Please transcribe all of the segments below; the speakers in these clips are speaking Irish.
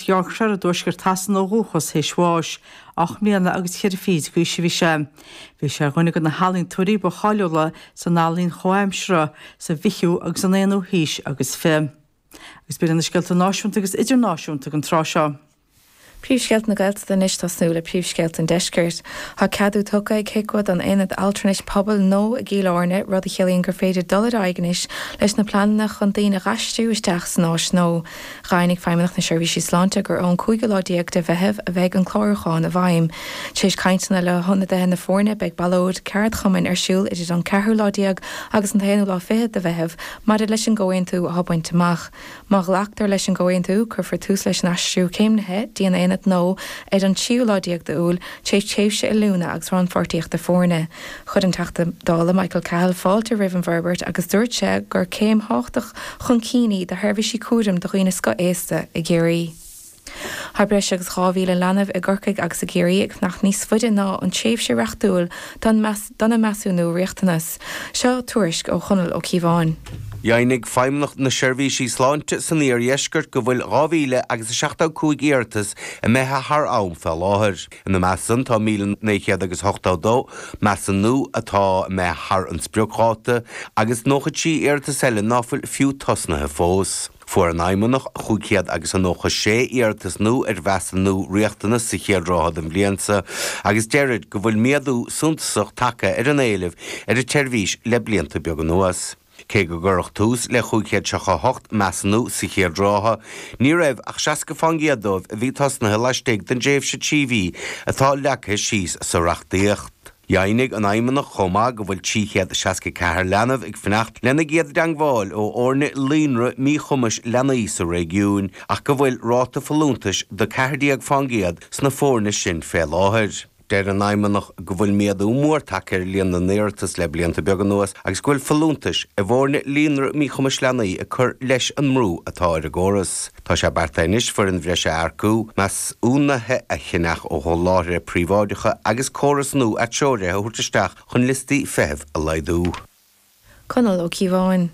Yorkshire i dtuaisceart Shasana ó dhúchas, théis bháis, ocht mbliana agus ceithre fichid d'aois a bhí sé. Bhí sé ar dhuine de na healaíontóirí ba cháiliúla san ealaín chomhaimseartha sa bhfichiú agus an aonú haois agus fiche. Agus b'in iad na scéalta náisiúnta agus idirnáisiúnta ag an tráth seo. Príomhscéalta na Gaeltachta Anois tosnú le príomhscéalta an Deiscirt. Tá ceadú tugtha ag HIQA don aonad altranais pobail nua i gCill Airne, rud a chiallaíonn gur féidir dul ar aghaidh anois leis na pleananna chun daoine a dh'aistriú isteach san áis nua. Dheimhnigh Feidhmeannacht na Seirbhíse Sláinte gur ón cúigiú lá déag de Mheitheamh a bheidh an clárúchán i bhfeidhm. Tar éis cainteanna le hionadaithe na foirne beidh ballóid ceardchumainn ar siúl idir an ceathrú lá déag agus an t-aonú lá fichead de Mheitheamh maidir leis an gcomhaontú atá bainte amach. Má ghlactar leis an gcomhaontú cuirfear tús leis an aistriú céimnithe dtí an aonad nua ar an tríú lá déag d'Iúil tar éis tréimhse oiliúna agus rannpháirtíochta foirne. Chuir an Teachta Dála Michael Cahill fáilte roimh an bhforbairt agus dúirt sé gur céim thábhachtach chun cinn í do sheirbhísí cúraim do dhaoine scothaosta i gCiarraí. Tá breis agus 2,000 leanbh i gCorcaigh agus i gCiarraí ag fanacht níos faide ná an tréimhse reachtúil dona measúnú riachtanas. Seo tuairisc ó Chonall Ó Cíobháin. Dheimhnigh Feidhmeannacht na Seirbhísí Sláinte san Iardheisceart go bhfuil 2,000 agus 75 iarratas imithe thar am fé láthair. Ina measc san tá 1,900 agus 82 measúnú atá imithe thar an spriocdháta agus 93 iarratas eile ná fuil fiú tosnaithe fós. Fuair an Fheidhmeannacht 500 agus 96 iarratas nua ar mheasúnú riachtanas sa chéad ráithe den bhliain seo agus deirid go bhfuil méadú suntasach tagtha ar an éileamh ar an tseirbhís le blianta beaga anuas. Cé go gcuireadh tús le cúig chéad seasca a hocht measúnú sa chéad ráithe, ní raibh ach seasca fán gcéad dóibh a bhí tosnaithe laistigh den dtréimhse trí mhí atá leagtha síos sa reachtaíocht. Dheimhnigh an Fheidhmeannacht chomh maith go bhfuil trí chéad seasca ceathair leanbh ag fanacht lena gcéad dteangmháil ó fhoirne líonra míchumais leanaí sa réigiún ach go bhfuil ráta folúntais de cheathair déag fán gcéad sna foirne sin fé láthair. Deir an Fheidhmeannacht go bhfuil méadú mór tagtha ar líon na n-iarratas le blianta beaga anuas agus go bhfuil folúntais i bhfoirne líonra míchumais leanaí ag cur leis an mbrú atá ar an gcóras. Tá sé beartaithe anois foireann bhreise a earcú, measúnuithe a cheannach ó sholáthraithe príobháideacha agus córas nua atreoraithe a thabhairt isteach chun liostaí feithimh a laghdú. Conall Ó Cíobháin.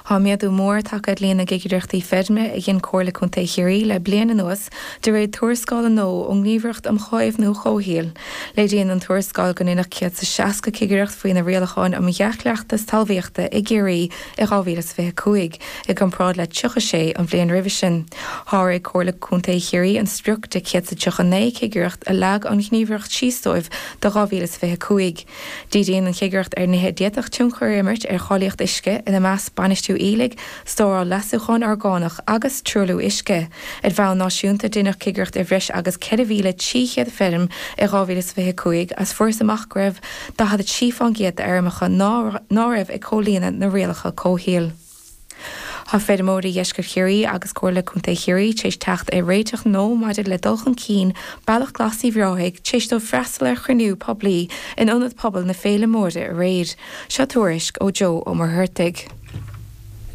Tá méadú mór tagtha ar líon na gcigireachtaí feirme a dhein Comhairle Contae Chiarraí le bliain anuas de réir tuarascáil nua ón nGníomhaireacht um Chaomhnú Comhshaoil. Léiríonn an tuarascáil go ndeineadh 160 cigireacht faoi na Rialacháin um Dhea-Chleachtas Talmhaíochta i gCiarraí i 2025 i gcomparáid le 36 an bhliain roimhe sin. Sháraigh Comhairle Contae Chiarraí an sprioc de 139 cigireacht a leag an Ghníomhaireacht síos dóibh do 2025. Díríonn an chigireacht ar nithe a d'fhéadfadh tionchar a imirt ar cháilíocht uisce, ina measc bainistiú aoiligh, stóráil leasúchán orgánach agus truailliú uisce. Ar bhonn náisiúnta, rinneadh cigireacht ar bhreis agus 4,300 feirm i 2025 is fuarthas amach go raibh 43% d'fheirmeacha ná raibh ag comhlíonadh na rialacha comhshaoil. Tá feirmeoirí Dheisceart Chiarraí agus Comhairle Contae Chiarraí tar éis teacht ar réiteach nua maidir le dul chun cinn Bealach Glas Uíbh Ráthaigh tar éis dóibh freastal ar chruinniú poiblí in Ionad Pobail na Faille Móire aréir. Seo tuairisc ó Joe Ó Muircheartaigh.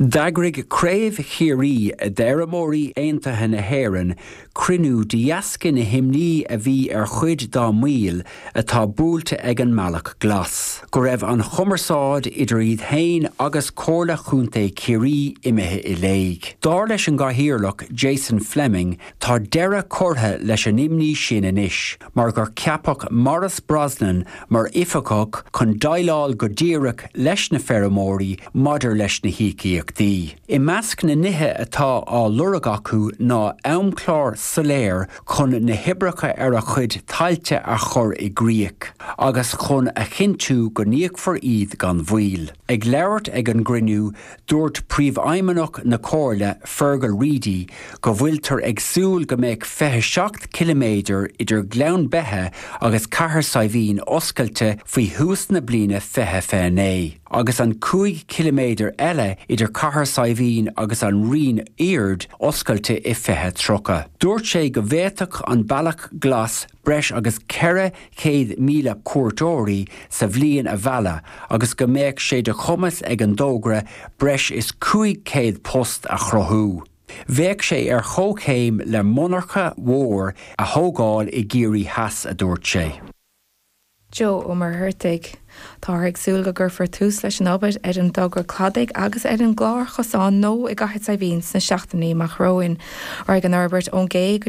D'eagraigh Craobh Chiarraí d'Fheirmeoirí Aontaithe na hÉireann cruinniú de dheasca na himní a bhí ar chuid dá mbaill atá buailte ag an mbealach glas, go raibh an chumarsáid idir iad féin agus Comhairle Chontae Chiarraí imithe i léig. Dar leis an gCathaoirleach, Jason Fleming, tá deireadh curtha leis an imní sin anois, mar gur ceapadh Maurice Brosnan mar oifigeach chun déileáil go díreach leis na feirmeoirí maidir leis na híocaíochtaí. I measc na nithe atá á lorg acu ná amchlár soiléir chun na hoibreacha ar a gcuid tailte a chur i gcrích agus chun a chinntiú go n-íocfar iad gan mhoill. Ag labhairt ag an gcruinniú, Dúirt Príomhfheidhmeannach na Comhairle, Fergal Reidy, go bhfuiltear ag súil go mbeadh 27 ciliméadar idir Gleann Beithe agus Cathair Saidhbhín oscailte faoi thús na bliana 2029, agus an 5 chiliméadar eile idir Cathair Saidhbhín agus an Rinn Aird oscailte i 2030. Dúirt sé go bhféadfadh an Bealach Glas breis agus 400,000 cuairteoirí sa bhliain a mhealladh agus go mbeadh sé de chumas ag an dtógra breis is 500 post a chruthú. Bheadh sé ar chomhchéim le monarcha mhór a thógáil i gCiarraí Theas, a dúirt sé. Joe Ó Muircheartaigh, Táthar ag súil go gcuirfear tús leis an obair ar an dtogra cladaigh agus ar an gclárchosán nua i gCathair Saidhbhín sna seachtainí amach romhainn. Raghaidh an fhorbairt ón gcé go